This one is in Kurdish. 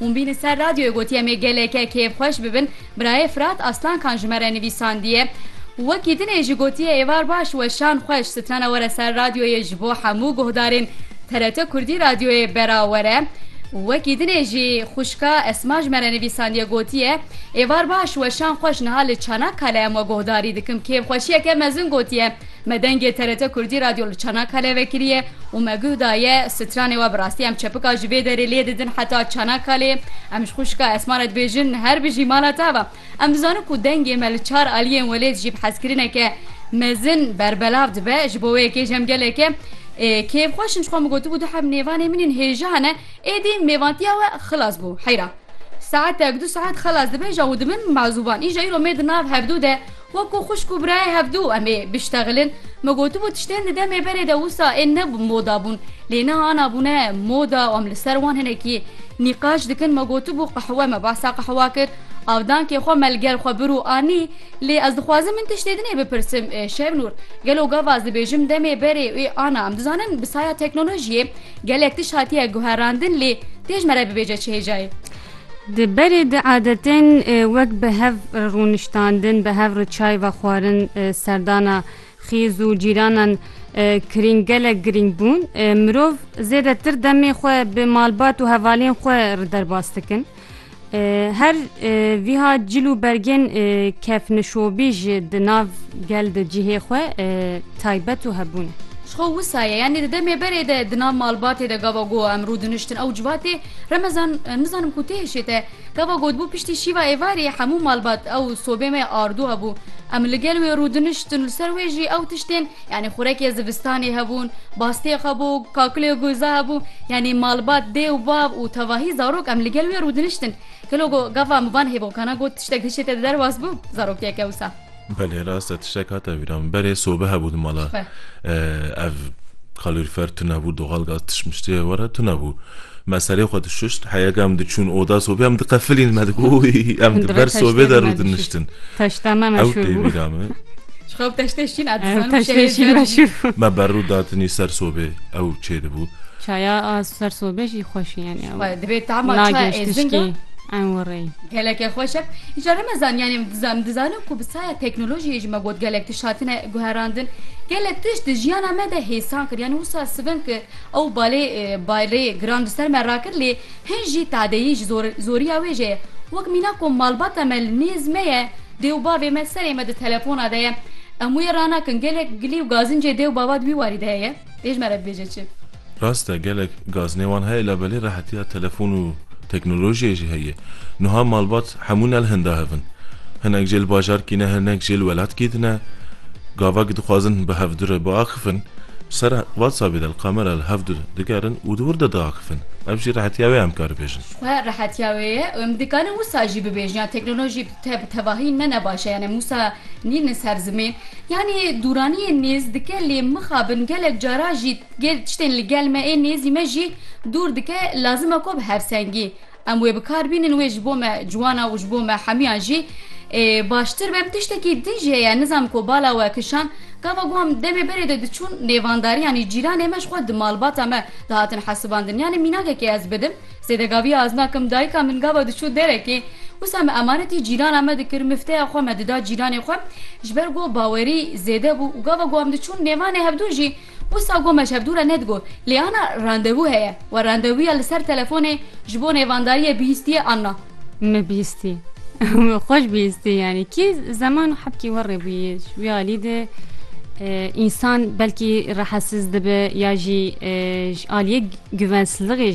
Hûn bînin ser radyoyê gotiye me geleke kêfxweş bibin, birayê Firat Aslankan ji me re nivîsandiye, Wekî dinê jî gotiye êvar baş weşan xweş strana were ser radyoyê ji bo hemû guhdarên TRT Kurdî radyoyê bera were. Wekî dinê jî xwişka Esma ji me re nivîsandiye gotiye êvar baş weşan xweş niha li Çanakkale em we guhdarî dikim kêfxweşiyeke mezin gotiye. Me dengê TRT Kurdî Radyo li Çanakkale vekiriye û me guh daye stranê we bi rastî em çepika ji vê derê lê didin heta Çanakkalê. Em ji xwişka Esma re dibêjin her bijî mala te ava. Em dizanin ku dengê me li çar aliyên welêt jî bi hezkirineke mezin berbelav dibe. Ji bo wê yekê ji em geleke kêfxweş in ji xwe min gotibû tu heb nêvanê min in hêja hene. Êdî mêvantiya we xilas bû heyra. Saetek du saet xelas dibêje û di min mazûban. Îja îro mê di nav hevdu de. Wekû xwişk û birayê hevdu em ê biştexilin. Me gotibû tiştên di demê berê de wisa ên ne bi moda bûn. Lê niha ana bûne moda û em li ser wan hinekî nîqaş dikin. Me gotibû qehwe me behsa qehwa kir. Avdankê xwe me li gel xwe bir û anî. Lê ez dixwazim min tiştê din ê bipirsim, Şevnûr, gelo gava ez dibêjim demê berê ê ana? Em dizanin bi saya teknolojiyê gelek tişt hatiye guherandin lê têj me re bibêje çi hêja ye? Di berê di adetên wek bi hev re rûniştandin, bi hev re çay vexwarin, serdana xêz û cîranan kirîng gelek girîng bûn. Mirov zêdetir demê xwe bi malbat û hevalên xwe re derbas dikin. Her vîha cil û bergên kevnişobî jî di nav gel de cihê xwe taybet û hebûn e. Ji xwe wisa ye, yanî di demê berê de di nav malbatê de gava goha em rûdiniştin ew civatê Remezan, Nizanim ku tê hişê te gava gotbû piştî şîva êvarê hemû malbat ew sobê me ardu hebû. Em li gel wê rûdiniştin li ser wê jî ew tiştên yanî xurekê zivistanê hebûn, bastê hebû, kakilê goza hebû yanî malbat dê û bav û tevahî zarok em li gel wê rûdiniştin. Gelo gava mivan hêvokana got tiştek hişê te di derwas bû? Zarok têke wisa. Belê rast e tiştek hate bîra min berê sobe hebû di mala ev kalorifer tunebû doxal gaz tişmiştiyê were tunebû me serê xwe dişişt heyeka em diçûn oda sobê em diqefilîn me digo em di ber sobê de rû diniştin ew tê bîra min me berû datinî ser sobê ew çê dibû çaya ser sobê jî xweşî yani divê tama nagê tişkî ew rê Gelekê xweş e. Îcar em ezan yanê em dizan dizanin ku bi saya teknolojiyê jî me got gelek tişt hatine guherandin. Gelek tişt di jiyana me de hêsan kir yanî wisa sivin ki ew balê barê giran di ser me rakir lê hin jî tadeyî ji zor zoriya wê jê ye. Wek mîna ku malbata me li nêz me ye dê û bavê me serê me di telefona de ye. Em wê ranakin gelek gilî û gazincê dê û bava di wî warî de heye. Ê ji me re bibêje çi? Rast e gelek gaznê wan heye labelê rehetiya telefon û teknolojiyê jî heye. Nuha malbat hemû ne li hinda hev in. Hinek jê li bajarkî ne hinek jê li welatkî din e. Gavak dixwazin bi hev dure biaxifin bi ser WhatsAppê de li kamera li hev dir digerin û di wir de diaxifin. Ev jî rehetiya wê em karibêjin. Ji xwe rehetiya wê ye û em dikarin wisa jî bibêjin ya teknolojî Te bi tevahî ne nebaş e yanê Mûsa nîn li ser zimên yanê dûraniyên nêz dike lê mixabin gelek cara jî gê tiştên li gel me ê nêzî me jî dûr dike lazim e ku bi hevsengî em wê bi kar bînin wê ji bo me ciwan e û ji bo me hemiyan jî ê baştir be em tiştekî din jî heye nizam ku bala we kişand gava ku em demê berê de diçûn nêvandariyanî cîranê me ji xwe di malbata me dihatin hesibandin yanê mînakekê ez bidim Zêdegaviya Azna Kim dayika min gava diçû derekê, wisa me emanetî cîrana me dikir, mifteya xwe me dida cîranê xwe, ji ber ku bawerî zêde bû û gava ku em diçûn nêvanê hevdû jî, wisa gom me ji hevdû re nedigot, lê ana randevû heye we randevûya li ser telefonê ji bo nêvandariyê bihîstiye anna. Me bihîstî. Xweş bihîstî yanî. Kî zeman û hebkî we rê bûyî. Ji vî alî de însan belkî rehesiz dibe ya jî ji aliyê guvensizligê jî.